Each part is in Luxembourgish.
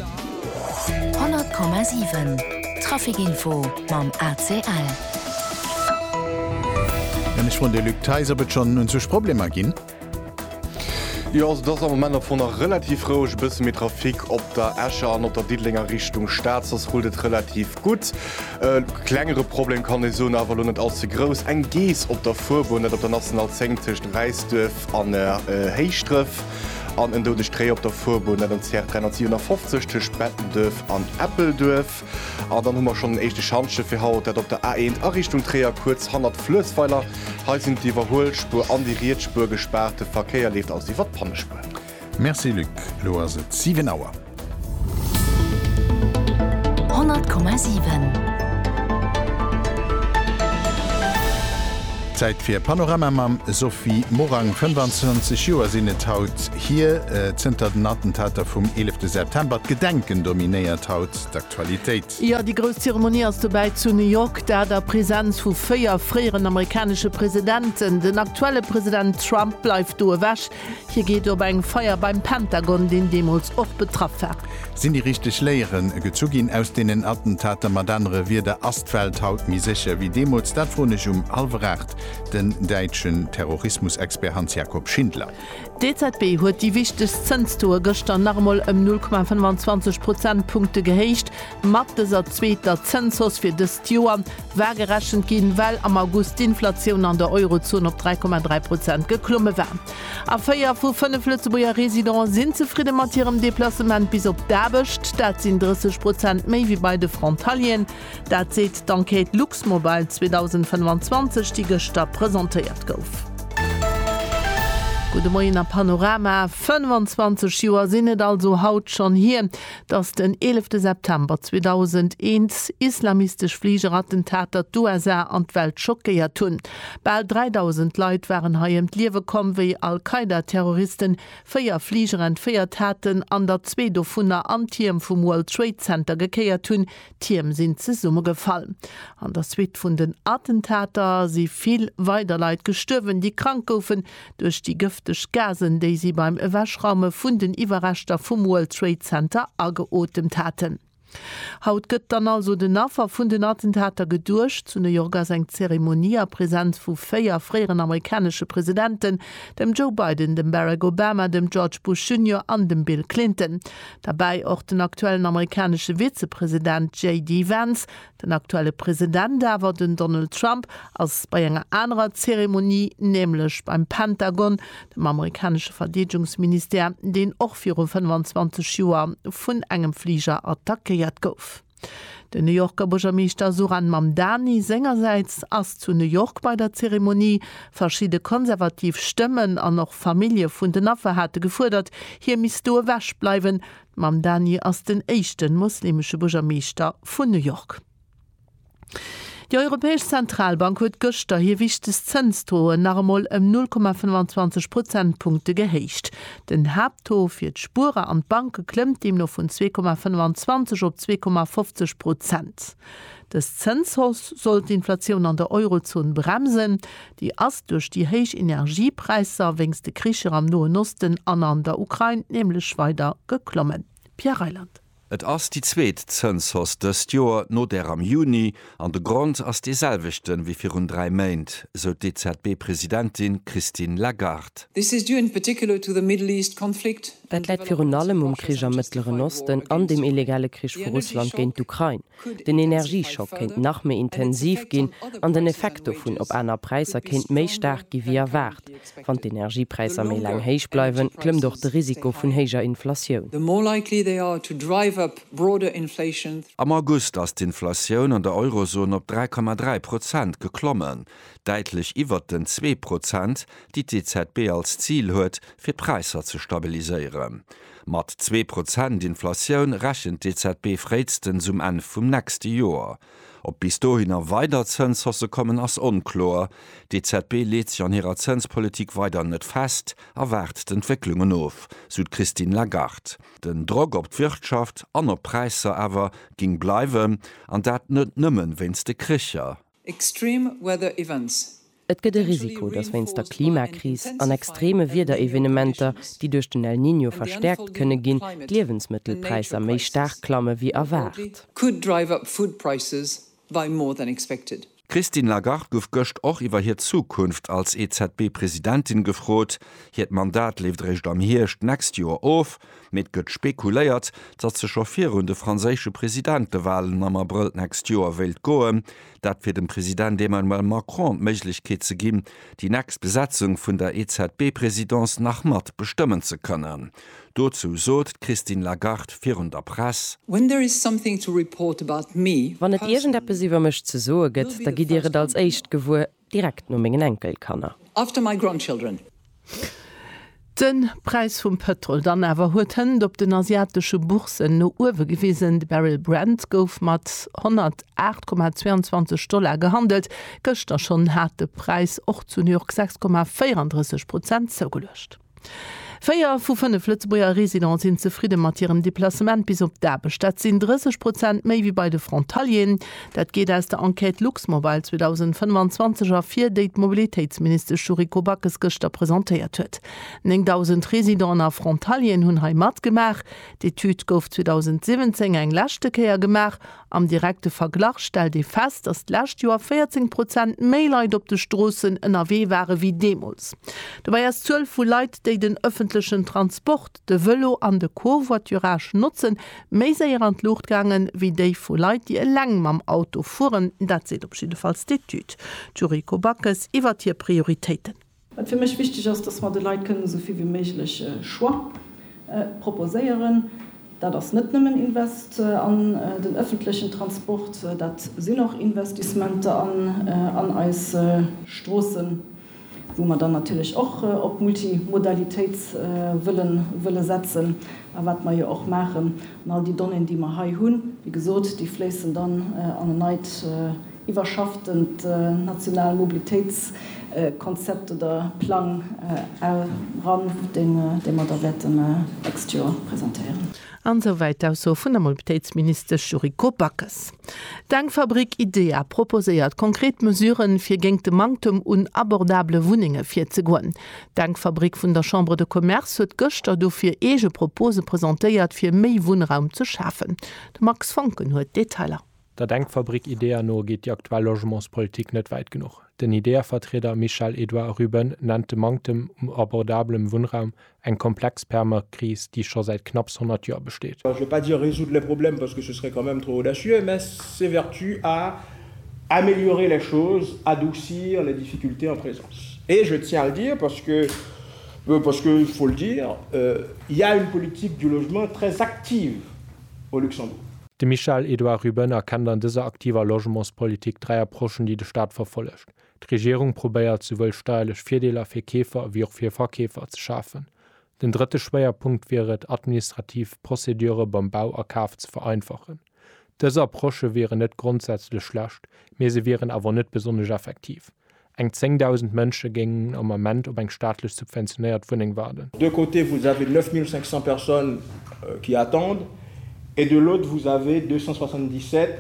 100,7 Trafic info mam ACL. Ech froen de Luc Thijs, ob et schonn un sech Problemer ginn? Jo, also et ass am Moment am Fong nach relativ roueg. E bësse méi Trafic op der Escher an op der Diddelenger Richtung Stad, soss rullt et relativ gutt. E klengere Problem kann ee soen, awer elo net all ze grouss, eng Geess op der Fuerbunn, dat op der National 10 tëscht Räisduerf an Héischdref. an en doudegt Réi op der Fuerbunn net an CR 357 tëscht Bettenduerf an Eppelduerf. An dann hu mer schonn en éischte Schantje fir haut, dat op der A 1 a Richtung Tréier kuerz hannert Fluessweiler. Hei sinn d'Iwwerhuelspuer an déi riets Spuer gespaart, de Verkéier leeft also iwwer d'Pannespuer. Merci Luc, elo ass et 7 Auer. Zäit fir Panorama mam Sophie Morang. 25 Joer sinn et haut hier, zënter den Attentater vum 11 September. D'Gedenken dominéiert haut d'Aktualitéit. Jo, déi grouss Zeremonie ass dobäi zu New York, dat a Presenz vu véier fréieren amerikanesche Presidenten. Den aktuelle President Trump bleift do ewech, Hie geet op eng Feier beim Pentagon, deen deemools och betraff war. Sinn déi richteg Léiere gezu ginn aus deenen Attentater? Mat anere Wierder, ass d'Welt haut méi sécher ewéi deemools? Dat froen ech um hallwer aacht den däitschen Terrorismusexpert Hans-Jakob Schindler. D'EZB huet déi wichtegst Zënstoe gëschter nach emol ëm 0,25 Prozentpunkte gehéicht. Mat dëser zweeter Zënshausse fir dëst Joer war gerechent ginn, well am August d'Inflatioun an der Eurozon op 3,3 Prozent geklomme war. A véier vu fënnef Lëtzebuerger Residenten sinn zefridde mat hirem Deplacement bis op d'Aarbecht. Dat sinn 30 Prozent méi wéi bei de Frontalieren. Dat seet d'Enquête Luxmobile 2025, déi gëschter presentéiert gouf. Gudde Moien a Panorama, 25 Joer sinn et also haut schonn hier, Datt den eelefte September 2001 islamistesch Fligerattentater d'USA an d'Welt schockéiert hunn. Bal 3.000 Leit waren hei ëm d'Liewe komm, wéi Al-Qaida-Terroristen véier Fliger entféiert haten an der zwee dovunner an d'Tierm vum World Trade Center gekéiert hunn, D'Tierm sinn zesummegefall. An der Suite vun den Attentater si vill weider Leit gestuerwen, déi krank goufen duerch déi gëfteg Gasen, déi si beim Ewechraume vun den Iwwerreschter vum World Trade Center ageotemt haten. Haut gëtt dann also den Affer vun den Attentater geduecht. Zu New York ass eng Zeremonie a Presenz vu véier fréieren amerikanesche Presidenten, dem Joe Biden, dem Barack Obama, dem George Bush Junior an dem Bill Clinton. Derbäi och den aktuellen amerikanesche Vizepresident JD Vance. Den aktuelle President awer, den Donald Trump, ass bei enger anerer Zeremonie, nämlech beim Pentagon, dem amerikanesche Verdeedegungsministère, deen och viru 25 Joer vun engem Fliger attackéiert gouf. Den New Yorker Buergermeeschter Zohran Mamdani sengersäits ass zu New York bei der Zeremonie. Verschidde konservativ Stëmmen an och Famillje vun den Affer hate gefuerdert, hie misst do ewech bleiwen. Mamdani ass den éischte muslimesche Buergermeeschter vun New York. Déi Europäesch Zentralbank huet gëschter hir wichtegst Zënsdoen nach emol ëm 0,25 Prozentpunkte gehéicht. Den Haapttaux fir d'Spuerer an d'Banke klëmmt deemno vun 2,25 op 2,50 Prozent. Dës Zënshausse soll d'Inflatioun an der Eurozon bremsen. Déi ass duerch déi héich Energiepräisser wéinst de Kricher am Noen Osten an an der Ukrain nämlech weider geklommen. Pierre Reyland. Et ass déi zweet Zënshausse dëst Joer, no där am Juni, an de Grond ass dee selwechte wéi virun dräi Méint, sou d'EZB-Presidentin Christine Lagarde. This is due in particular to the Middle East conflict. Dat läit virun allem um Krich am Mëttleren Osten an dem illegale Krich vu Russland géint d'Ukrain. Den Energieschock kéint nach méi intensiv ginn an den Effekt dovun op aner Präisser kéint méi staark gi wéi erwaart. Wann d'Energiepräisser méi laang héich bleiwen, klëmmt och de Risiko vun héijer Inflatioun. Am August ass d'Inflatioun an der Eurozon op 3,3 Prozent geklommen, däitlech iwwert den zwee Prozent, déi d'EZB als Zil huet, fir d'Präisser ze stabiliséieren. Mat zwee Prozent Inflatioun rechent d'EZB fréistens um Enn vum nächste Joer. Ob bis dohinner weider Zënshausse kommen, ass onkloer. D'EZB leet sech an hirer Zënspolitik weider net fest a waart d'Entwécklungen of, sou d'Christine Lagarde. Den Drock op d'Wirtschaft an op d'Präisser awer géing bleiwen, an dat net nëmmen wéinst de Kricher. Extreme weather events, Et gëtt e Risiko, dass wéinst der Klimakris an extreme Wiederevenementer, déi duerch den El Niño verstäerkt kënne ginn, d'Liewensmëttelpräisser méi staark klamme wéi erwaart. D'Christine Lagarde gouf gëscht och iwwer hir Zukunft als EZB-Presidentin gefrot. Hiert Mandat leeft eréischt am Hierscht d'nächst Joer of, mee et gëtt spekuléiert, dass se scho virun de franséische Presidentewalen am Abrëll d'nächst Joer wéilt goen. Dat fir dem President Emmanuel Macron d'Méiglechkeet ze ginn, déi nächst Besetzung vun der EZB-Presidence nach mat bestëmmen ze kënnen. Dozou sot d'Christine Lagarde virun der Press. Wann et iergendeppes iwwer mech ze soe gëtt, da gitt Dir et als éischt gewuer, direkt no mengen Enkelkanner. De Präis vum Pëtrol dann awer huet d'Hënt op den asiatesche Bourssen no uewe gewisen. De Barrel Brent gouf mat 108,22 Dollar gehandelt. Gëschter schonn hat de Präis och zu New York 6,34 Prozent zougeluecht. Véier vu fënnef Lëtzebuerger Residente sinn zefridde mat hirem Deplacement bis op d'Aarbecht. Dat sinn 30 Prozent méi wéi bei de Frontalieren. Dat geet aus der Enquête Luxmobile 2025 ervir, déi d'Mobilitéitsministesch Yuriko Backes gëschter presentéiert huet. 9.000 Residenten a Frontalieren hunn hei matgemaach. D'Etüd gouf 2017 eng leschte Kéier gemaach. Am direkte Verglach stellt ee fest, datt d'lescht Joer 14 Prozent méi Leit op de Stroossen ënnerwee ware wéi deemools. Dobäi ass d'Zuel vu Leit, déi den ëffentlechen Transport, de Vëlo an de Covoiturage notzen, méi séier an d'Luucht gaangen, wéi déi vu Leit, déi eleng mam Auto fueren. Dat seet op jiddefalls d'Etüd. D'Yuriko Backes iwwert hir Prioritéiten. Wat fir mech wichteg ass, dass mer de Leit kënnen esou vill wéi méiglech Choix proposéieren. Dat ass net nëmmen Invest an den ëffentlechen Transport, dat sinn och Investissementer an eis Stroossen. wou mer dann natierlech och op d'Multimodalitéit wëlle setzen a wat mer jo och maachen. An all déi Donnéeën, déi mer hei hunn, wéi gesot, déi fléissen dann an en neit iwwerschafftent nationalt Mobilitéitskonzept oder plang eran, dee mer da wäerte d'nächst Joer presentéieren. An esou wäit d'Ausso vun der Mobilitéitsministesch Yuriko Backes. D'Denkfabrik IDEA proposéiert konkret Mesuren, fir géingt de Manktem un abordabele Wunnenge virzegoen. D'Denkfabrik vun der Chambre de Commerce huet gëschter dofir eege Propose presentéiert, fir méi Wunnraum ze schafen. De Max Foncken huet d'Detailer. Der Denkfabrik IDEA no geet déi aktuell Logementspolitik net wäit genuch. Den IDEA-Vertrieder Michel Edouard Ruben nennt de Manktem u abordabelem Wunnraum eng komplex Perma-Kris, déi scho säit knapps 100 Joer besteet. Je vais pas dire résoudre les problèmes parce que ce serait quand même trop audacieux, mais s'évertue à améliorer les choses, adoucir les difficultés en présence. Et je tiens à le dire parce que, parce que, il faut le dire, il y a une politique du logement très active au Luxembourg. De Michel Edouard Ruben erkennt an dëser aktiver Logementspolitik dräi Approchen, déi de Staat verfollegt. D'Regierung probéiert, souwuel steierlech Virdeeler fir Keefer ewéi och fir Verkeefer ze schafen. Den drëtte Schwéierpunkt wier et, administrativ Procédure beim Bau a Kaf ze vereinfachen. Dës Approche wieren net grondsätzlech schlecht, mee se wieren awer net besonnesch effektiv. Eng 10.000 Mënsche géingen am Ament op eng staatlech subventionéiert Wunneng waarden. D'un côté vous avez 9 500 personnes qui attendent et de l'autre vous avez 277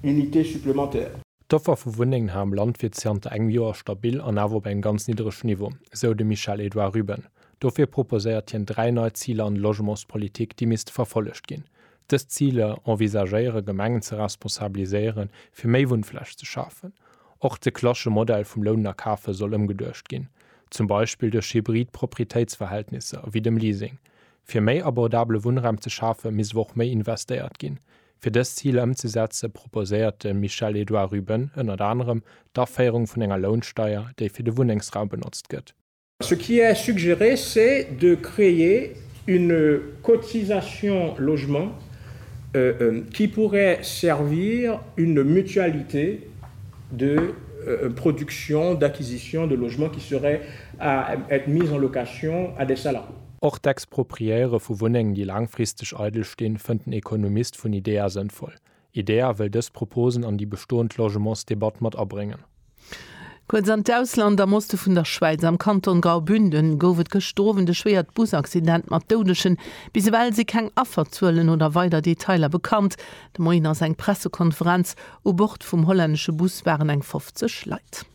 unités supplémentaires. D'Offer vu Wunnengen hei am Land wier zanter engem Joer stabil an awer op engem ganz nidderege Niveau, esou de Michel-Edouard Ruben. Dofir proposéiert hien dräi nei Ziler an de Logementspolitik, déi misste verfollegt ginn, Dës Ziler envisagéiere Gemengen ze responsabiliséieren, fir méi Wunnfläch ze schafen. Och de clasche Modell vum Lounen a Kafen soll ëmgeduecht ginn, zum Beispill duerch hybrid Proprietéitsverhältnisser, wéi dem Leasing. Fir méi abordabele Wunnraum ze schafen, misst awer och méi investéiert ginn. Fir dës Ziler ëmzesetzen, proposéiert de Michel-Edouard Ruben ënnert anerem d'Aféierung vun enger Lounsteier, déi fir de Wunnengsraum benotzt gëtt. Ce qui est suggéré, c'est de créer une cotisation logement qui pourrait servir une mutualité de production, d'acquisition de logements qui seraient à être mis en location à des salariés. Och d'Expropriéiere vu Wunnengen, déi laangfristeg eidel stinn, fënnt den Ekonomist vun IDEA sënnvoll. IDEA wëll dës Proposen an déi bestoend Logementsdebatt mat abréngen. Kuerz an d'Ausland, Am Oste vun der Schwäiz, am Kanton Graubünden, gouf et gëschter Owend e schwéiert Busaccident mat Doudegen. Bis ewell si keng Afferzuelen oder weider Detailer bekannt. De Moien ass eng Pressekonferenz. U Bord vum hollännesche Bus waren eng 50 Leit.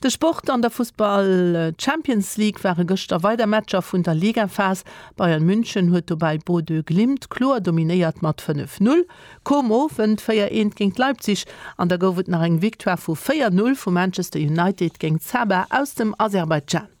De Sport an der Fussball-Champions League ware gëschter weider Matcher vun der Ligaphas. Bayern München huet dobäi Bodø Glimt kloer dominéiert mat 5, 0. Kom Owend 4 eent géint Leipzig an da gouf et nach eng Victoire vu 4, 0 vu Manchester United géint Sabah aus dem Aserbaidjan.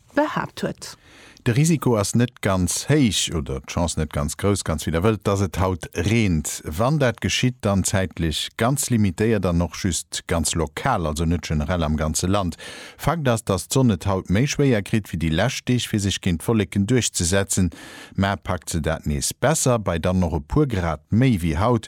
behaapt huet. De Risiko ass net ganz héich, oder d'Chance net ganz grouss, ganz wéi der wëllt, dass et haut reent. Wann dat geschitt, dann zäitlech ganz limitéiert an och just ganz lokal, also net generell am ganze Land. Fakt ass, dass d'Sonn et haut méi schwéier kritt wéi déi lescht Deeg, fir sech géint d'Wolleken duerchzesetzen. Mä packt se dat nees besser, bei dann och e puer Grad méi wéi haut,